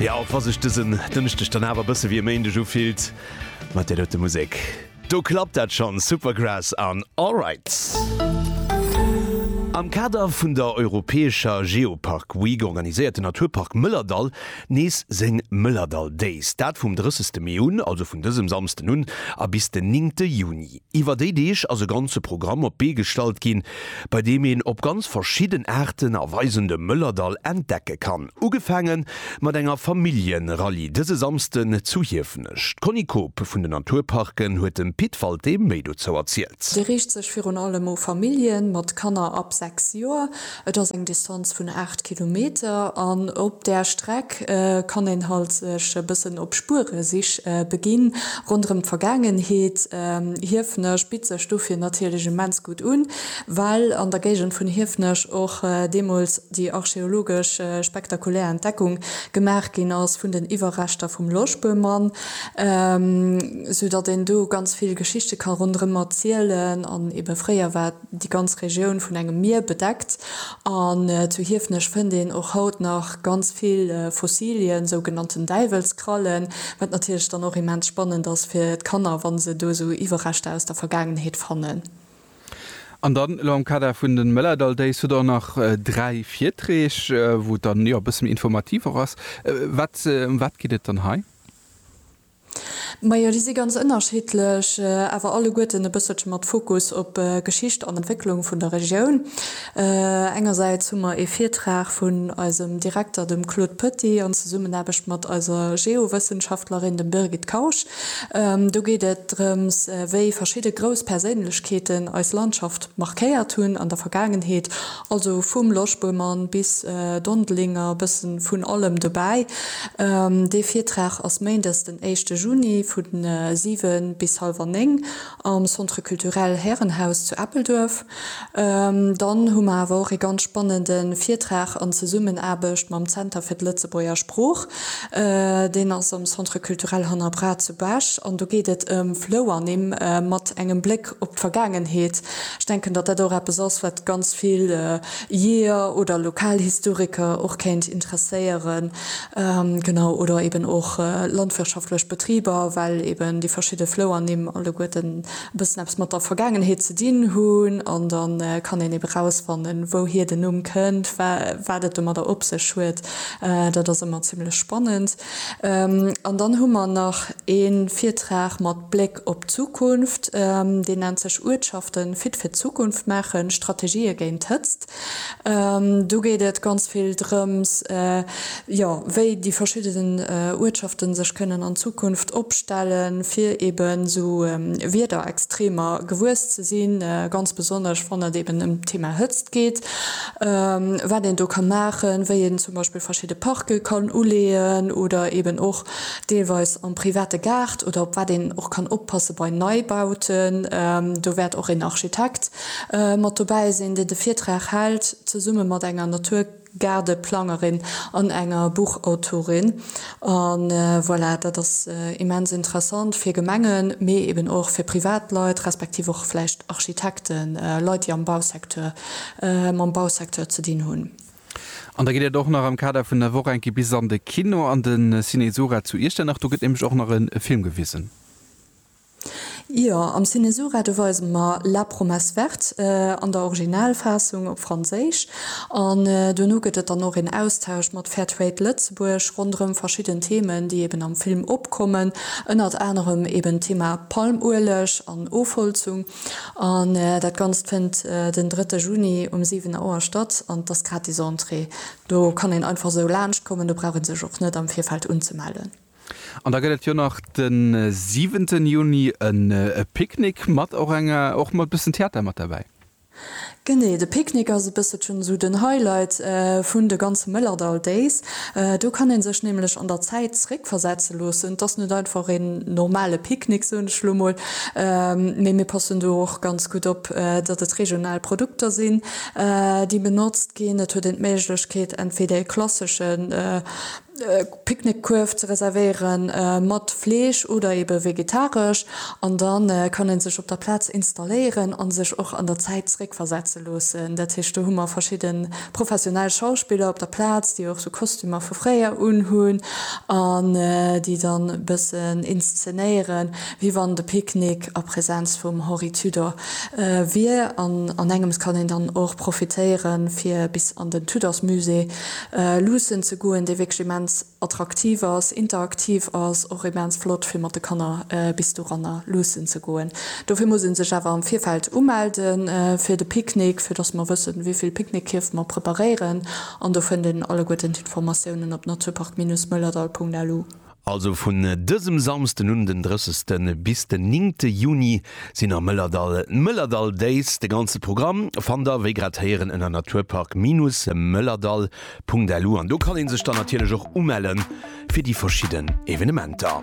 Jo, och wa sech dësen Dënschdeg dann awer e bësse wéi e Méindeg ufillt mat där dote Musek, do klappt dat schonn, Supergrass an Alright. Am Kader vun der europäescher Geopark Week organiséiert den Naturpark Mëllerdall nees seng Mëllerdall Days, dat vum 30 Mee un, also vun dësem Samsden un a bis den 9 Juni. Iwwer déi Deeg ass e ganze Programm op d'Bee gestallt ginn, bei deem een op ganz verschidden Aarten a Weisen de Mëllerdall entdecke kann. Ugefaange mat enger Familljenrallye dëse Samsden zu Hiefenech. D'Conny Koob vun den Naturparken huet dem Pit Walté méi dozou erzielt. Dee riicht sech virun allem u Famillje mat Kanner ab 6 Joer. Et ass eng Distanz vun 8 Kilometer an op där Streck kann een halt sech e bëssen op Spueresich beginn ronderëm d'Vergaangenheet. Hiefenech bitt sech dofir natierlech immens gutt un, well an der Géigend vun Hiefenech och deemools déi archeologesch spektakulär Entdeckung gemaach ginn ass vun den Iwwerreschter vum Loschböhmann, sou datt een do ganz vill Geschichte ka ronderëm erzielen an ebe fréier war déi ganz Regioun vun engem Mier bedeckt, an zu Hiefenech fënnt een och haut nach ganz vill Fossilien, sougenannten Däiwelskrallen, wat natierlech dann och immens spannend ass fir d'Kanner, wa se do esou Iwwerreschter aus der Vergaangenheet fannen. An dann elo am Kader vun de Mëllerdall Days hutt Der och nach dräi Virträg, wou et dann e bësse méi informativ och ass. Ëm wat geet et dann hei? Majo, déi si ganz ënnerschiddlech, awer alleguerten e bësselche mat Fokus op Geschicht an Entwécklung vun der Regioun. Engersäits hu mer ee Virtrag vun eisem Direkter, dem Claude Petit, an Zesummenaarbecht mat eiser Geowëssenschaftlerin, dem Birgit Kausch. Do geet et drëms, wéi verschidde grouss Perséinlechkeeten eis Landschaft markéiert hunn an der Vergaangenheet. Also vum Loschböhmann bis Dondelinger, bëssen vun allem dobäi. Dee Virtrag ass Méindes den éischte Juni vu 7 bis halwer 9 am Centre Culturel Härenhaus zu Eppelduerf. Dann hu mer awer och ee ganz spannende Virtrag an Zesummenaarbecht mam Zenter fir d'Lëtzebuerger Sprooch. Deen ass am Centre Culturel Hanner Braat zu Bech an do geet et ëm Flouernimm mat engem Bléck op d'Vergaangenheet. Ech denken, datt dat och eppes ass, wat ganz vill Jeeër oder Lokalhistoriker och kéint interesséieren, genau, oder eben och landwirtschaftlech Betriber, well eben déi verschidde Flouernimm alleguerten e bëssen eppes mat der Vergaangenheet ze dinn hunn. An da kann een eben erausfannen, wouhier den Numm kënnt, wa wat et domadder op sech huet. Dat ass ëmmer zimlech spannend. An dann hu mer nach ee Virtrag mat Bléck. Op d'Zukunft, deen nennt sech Uertschaften fit fir d'Zukunft maachen, Strategië géint d'Hëtzt. Do geet et ganz vill drëms, jo, wéi déi verschidden Uertschaften sech kënnen an Zukunft opstellen, fir eben esou Wiederextremer gewuess ze sinn, ganz besonnesch wann et eben ëm d'Thema Hëtzt geet, wat een do ka maachen, wéi een zum Beispill verschidde Parke kann uleeën oder eben och deelweis am private Gaart oder op wat een och kann oppasse bei Neibauten. Do wäert och een Architekt mat dobäi sinn, deen de Virtrag hält, zesumme mat enger Naturgaardeplangerin an enger Buchautorin. A voilà, dat ass immens interessant fir Gemengen, mee eben och fir privat Leit, respektiv och vläicht Architekten, Leit, déi am Bausecteur, mam Bausecteur ze dinn hunn. An da geet et och nach am Kader vun der Woch eng Kéier bis an de Kino, an de Ciné Sura zu Iechternach. Do gëtt nämlech och nach e Film gewisen. Jo, am Ciné Sura, do weise mer La promesse verte an der Originalfaassung op Franséisch. An duerno gëtt et dann och een Austausch mat Fair Trade Lëtzebuerg ronderëm verschidden Themen, déi eben am Film opkommen. Ënnert anerem eben d'Thema Palmueleg an Ofholzung. An dat Ganzt fënnt den drëtte Juni um 7 Auer statt an et ass gratis Entrée. Do kann een einfach esou laanscht kommen, do brauch ee sech och net am Virfeld unzemellen. An da gëtt et jo nach den siwenten Juni e Picknick mat och enger, och mat bëssen Theater mat derbäi. Genee, de Picknick ass e bësselchen esou den Highlight vun de ganze Mëllerdall Days. Do kann ee sech nämlech an der Zäit zréckversetze loossen. Et ass net einfach een normale Picknick, soen ech elo mol, mee mir passen do och ganz gutt op, datt et regional Produkter sinn, déi benotzt ginn. Et huet een d'Méiglechkeet, entweder e klassesche. Picknickkuerf ze reservéieren, mat Fleesch oder ebe vegetaresch, an da kann ee sech op der Plaz installéieren a sech och an der Zäit zeréckversetze loossen. Dat heescht, do hu mer verschidde professionell Schauspiller op der Plaz, déi och sou Kostümer vu fréier unhunn an déi dann e bëssen inszenéieren, wéi wann de Picknick a Präsenz vum Henri Tudor wier. An an engems kann een dann och profitéiere fir bis an den Tudorsmusée luussen ze goen, déi wierklech immens attraktiv ass, interaktiv ass, och immens flott fir mat de Kanner bis doranner luussen ze goen. Dofir muss ee sech awer am Virfeld umelde fir de Picknick, fir datt mer wëssen, wéi vill Picknickkierf mer preparéieren. An do fënnt een alleguerten d'Informatiounen op naturpark-moellerdall.lu. Also vun dësem Samsden un, den 30 bis den 9 Juni, sinn am Mëllerdall d'Mëllerdall Days. De ganze Programm fannt der wéi grad héieren ënner naturpark-mëllerdall.lu an do kann ee sech dann natierlech och umelle fir déi verschidden Evenementer.